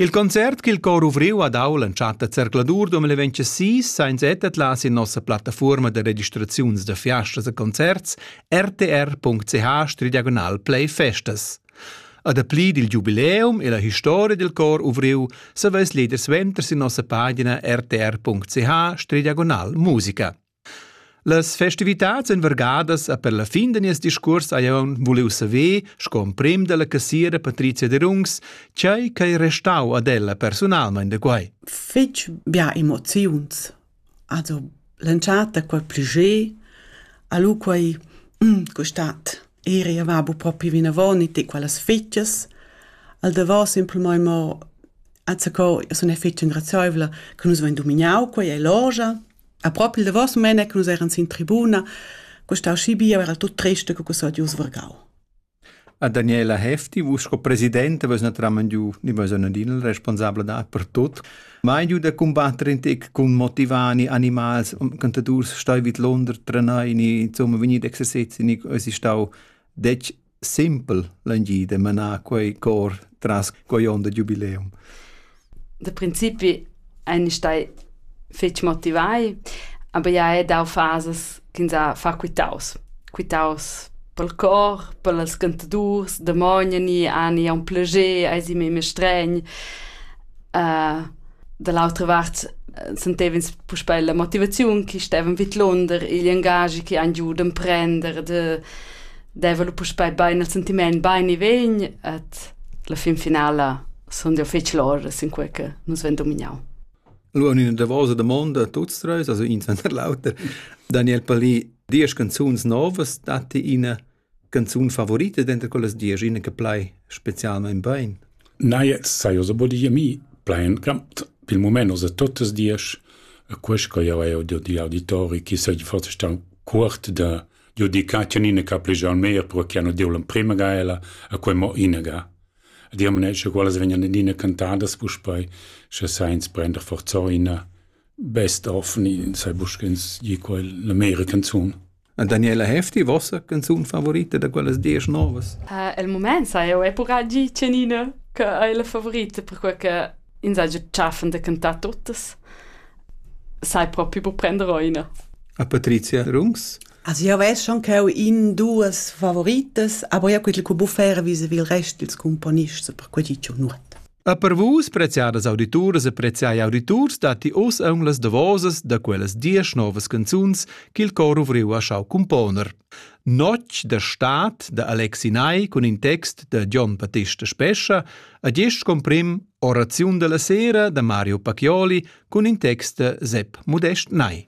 Il concert ch'il cor ovriu ha dau l'entschatta zercladur 2026 sa ins ettatla sin nossa plattafuorma da registraziuns da fiastas e concerts rtr.ch-play festas. A dapli dil giubileum e la historia dil cor ovriu saveis leader suenter sin nossa pagina rtr.ch-musica. Las festivitads ein vargadas e per la fin da nies discuors hai aunc vuliu saver, sco emprem dalla cassiera Patrizia Derungs, tgei ch'ei restau ad ella personalmein da quei. Fetg bia emoziuns. Also l'entschatta quei pluger, a lu quei mm, quest'at eri va bu propi vinavon e ti quellas fetgas. Al davos simpelmain mo azzacò, io sun è fetg engrazioevla che nus vain dominau quei e logia. A propi il davos mene che nus eran sin tribuna, costau schi bia era tut triste co quels odius vargau. A Daniela Hefti, vus sco presidente, vus naturalment giu, ni vus adin il responsabla da per tot, mai giu da combatter in tec cun motivani, animals, cantadurs stoi vid Londra trenai, ni insomma vegnir exercezi, ni es stau dec simpel l'angid e manar quei cor tras quei onda giubileum. Da principi ein stai fetg motivai, aber ja è dau fases che sa fa quitaus. Quitaus pel cor, pels cantadurs, demogna ni ani un plager, ai si me mestregn. Uh, Da l'autra vart eh, sentev'ins puspè la motivaziun che stevan vidlunder igl engagi che han giu d'emprender de deva lu puspei bein il sentiment bein e vegn et la fin finala sun jau fetg lor sin quei che nus ven dominau. Lu in davosa domanda tuts treis, also in senter l'auter. Daniel Palì, diesch canzuns novas datti ina canzun favorita denter quellas diesch ina che plai specialmein bein? Nei, sai oz aber die mi plain gramt. Pil moment oz totas diesch e questo io è di di auditori che se forse sta cuort da di dedicazione che più al meglio perché hanno dio l'emprima gaela e quei mo inaga. Di am ne quelle vengono dine cantate puspei se sainz prender forza ina best of ni sai buscens di quel l'American zone. Daniela Hefti, vossa canzun favorita da quellas diesch novas? Uh, el moment sa eu è purà gi Cenina che è la favorita per quel che insagge tschaffen da cantar tuttas. Sai proprio per prender oina. A Patrizia Rungs? Also io weiß schon che ho in duas favoritas, aber io quel che buffera vis il rest dils componists per quei gi nuot. A per vus, preziadas audituras e preziai auditurs, datti oz aun las davosas da quellas diesch novas canzuns ch'il cor ovriu ha schau componer. Notg da Staat da Alexi Ney cun in text da Gian Battista Spescha, a gest comprim Oraziun della sera da Mario Pacchioli cun in text da Sepp Modest Ney.